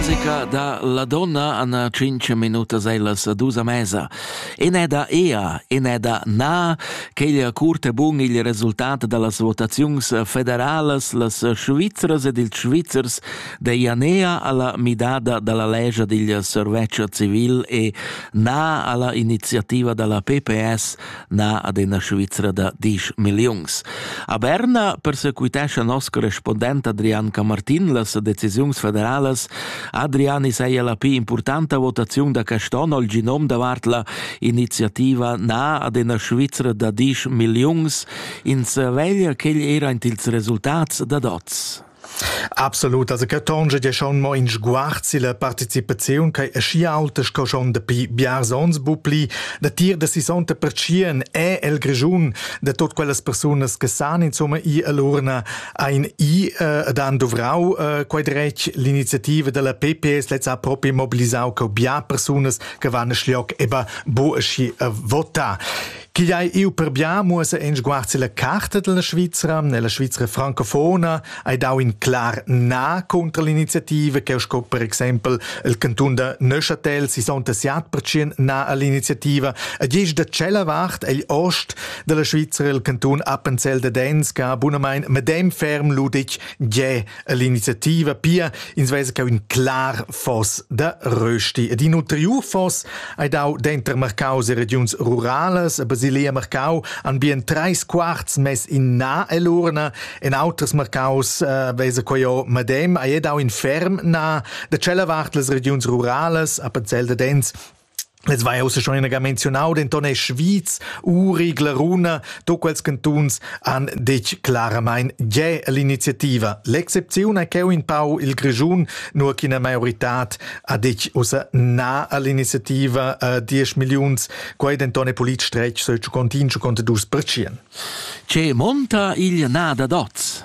musica da la donna Anna cinque minutas è la sedusa mesa. E ne da ea, e ne da na, queglia curt e bun il resultat da las votaziuns federalas, las Svizras ed ils Svizzers de Ianea alla midada dalla legge digl serveccio civil e na alla iniziativa dalla PPS na ad ina Svizra da disch milliuns. A Berna persequitescha nos correspondent Adrian Camartin las decisiuns federalas. Adrian is ei la pli importanta votaziun da Caston al genom davart la iniziativa na ad ina Svizra da disch milliuns. Ins veglia ch'egl era int ils resultats dad oz. Absolut, also che tonge ja schon mo in sguarzi la participaziun che aschi aulta sco schon dapi biars ons bupli da tir da si sonta pertschien è el Grischun da tot quellas persunas che san insomma i all'urna ein i äh, da han dovrau äh, quei dretg l'iniziativa della PPS letz ha proprio mobilisau co bia persunas che van schliog eba bo aschi äh, vota. Chi ei iu per bia muossa in sguard la carta della Svizzera, nella Svizzera francofona, hai dau in clar na contro l'iniziativa che sco per exempel il cantun da Neuchâtel si son tessiat percien na all'iniziativa ed isch da cella vart egl ost della Svizzera il cantun Appenzell de Denz che bunamein medem ferm ludig ge l'iniziativa pia ins vesa che un clar foss da rösti ed in ulteriur foss hai dau denter Marcaus e regiuns ruralas a Basilea Marcau han bien treis quarts mess in na elurna en auters Marcaus uh, vesa quio madem hai dau in ferm na da tschella vart las regiuns ruralas a Pazel da Dens Ins vai ussa schon inaga menzionau, denton è Schwyz, Uri, Glaruna, tut quels cantuns han detg claramain gie l'iniziativa. L'excepziun è cheu in pau il Grischun, nur ch'ina maioritad ha detg ussa na all'iniziativa a 10 milliuns. Quei denton è polit stretg, so il Cicontin, Ciconte dus percien. Che monta il na da dots?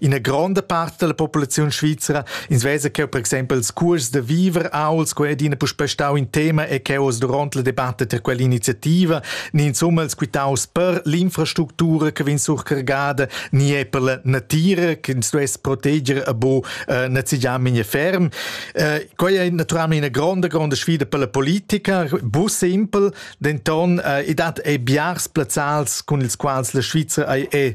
Ina gronda part della populaziun svizera ins vesa che per exempel ils curs da viver auls quei ed ina puspei stau in tema e che oz duront la debatta per quell'iniziativa ni insomma els quitaus per l'infrastructura che vegn surcargada ni è per la natira che ins duess proteger a bo eh, nazigiam in ferm. Eh, quei è naturalmente una gronda gronda sfida per la politica, bu simpel, denton eh, e dat ei biars plazzals con ils quals la Svizzera ei, è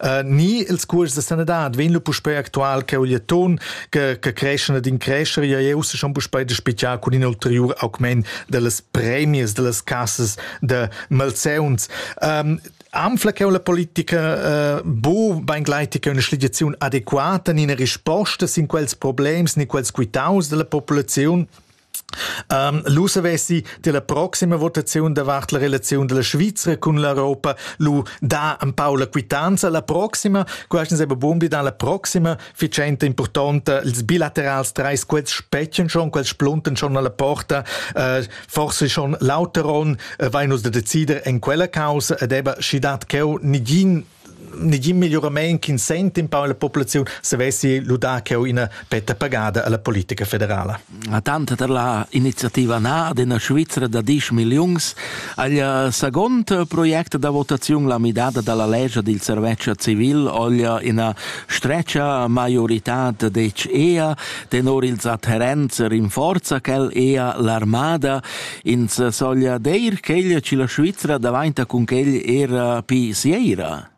uh, ni ils curs de sanadad vegn lu puspei actual che ugliaton che che creschene din crescher ja eu se schon puspei de spezial con in ulterior augment dellas premies dellas cassas de malseuns um, Amfla che la politica uh, bu beingleitig che una schligiazione adeguata in risposta sin quels problems ni quels quitaus della popolazione Um, lu savessi della proxima votazione davart la relazione della Svizzera con l'Europa lu da un pau la quittanza la proxima questo sembra buon di la proxima ficente importante ils bilaterals treis quels specchen schon quels splunten schon alla porta uh, forse schon Lauteron uh, vai nus da decider in quella causa ed eba schi dat cheu nigin negin migliorament ch'in sent in pau la populaziun savessi ludar cheu ina petta pagada alla politica federala. A tanta per la iniziativa Na d'ina Svizra da 10 milliuns agl second project da votaziun la midada dalla legge del serveccio civil oglia ina stretcha maiorità dec ea tenor ils adherents rinforza quel ea l'armada Ins soglia dir ch'egl che la Svizra davainta cun quel era pi sieira?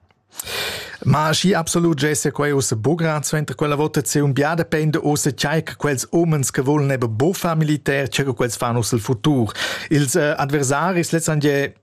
Ma schi absolut gesse quei uss bugra suenter quella votaziun bia depende uss chai che quels umens che volen eben bufa militär che quels fan uss el futur. Ils äh, adversaris letztendlich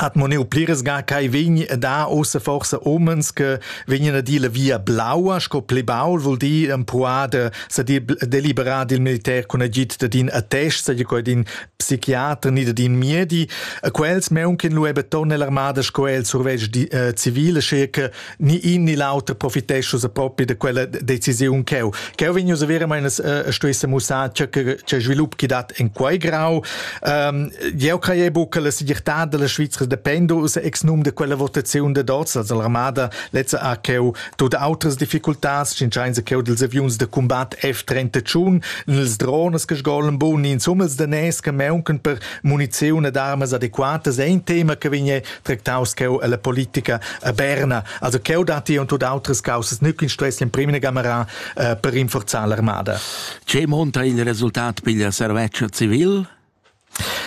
hat mo neu pliras ga ch'ei vegni a dar ussa forsa umens che vegnien a dir la via blaua sco pli baul vul dir empruada sa deliberar dil militer cun agid da din attest sa coi din psichiater ni da din miedi a quels meunchen lu ebbe ton nell'armada sco el survegg di, uh, civile sche che ni in ni l'auter profitescha sa propi da quella decisiun cheu. Cheu vegn us a vera meinas uh, stuesse mussar che che svilup chi dat in quei grau. Um, jeu crei bu che la segirtà della Svizra dependa us ex num de quella votaziun de Dots, also l'armada lezza ha cheu tut outras difficultas, sin schein se cheu dels aviuns de combat F31, nels drones che sgolen bun, in summels de nes che meunken per munizione d'armas adequatas è ein tema che vigne tractaus cheu ella politica a Berna. Also cheu datti und tut outras causas nügin stress in primina gamera eh, per rinforzar l'armada. Che monta il resultat piglia serveccia civil?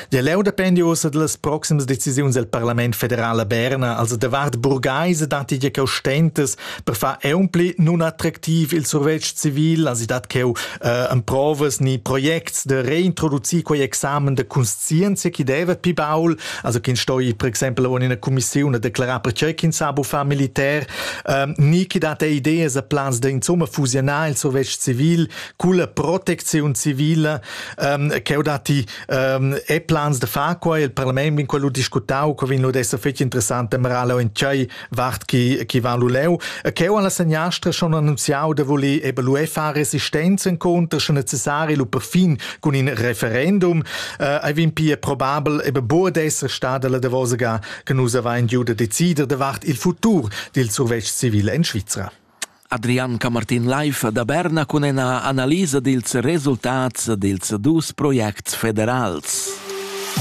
Der leu dependi ussa dallas proximas decisiuns del Parlament federal a Berna, also davart burgaise datti je cheu stentas per far eumpli nun attraktiv il survetsch civil, also dat cheu äh, en provas ni projekts de reintroducir quei examen de conscienzia chi deva pi baul Also ch'ins stoi per exempel en ina commissiun declarar pertgei ch'ins sa buffar militär, ähm, ni chi dat ei ideas e plans da insomma fusionar il survetsch civil culla protecziun civile ähm, che ho dati ähm, e plans da far quai il parlament vin quello discutau che vin lo d'esser fetg interessante marala en tgei Vart chi chi van lu leu, cheu an la seniastra schon annunziau da voler eben lu far resistenza inconter sche necessari lu perfin cun in referendum. Äh, ei vin pia probabel eben bo d'esser stada la davosaga che nus avain giu da decider davart il futur dil survetsch civil en Svizra. Adrian Camartin Leif da Berna cun ena analisa dils resultats dils dus projects federals.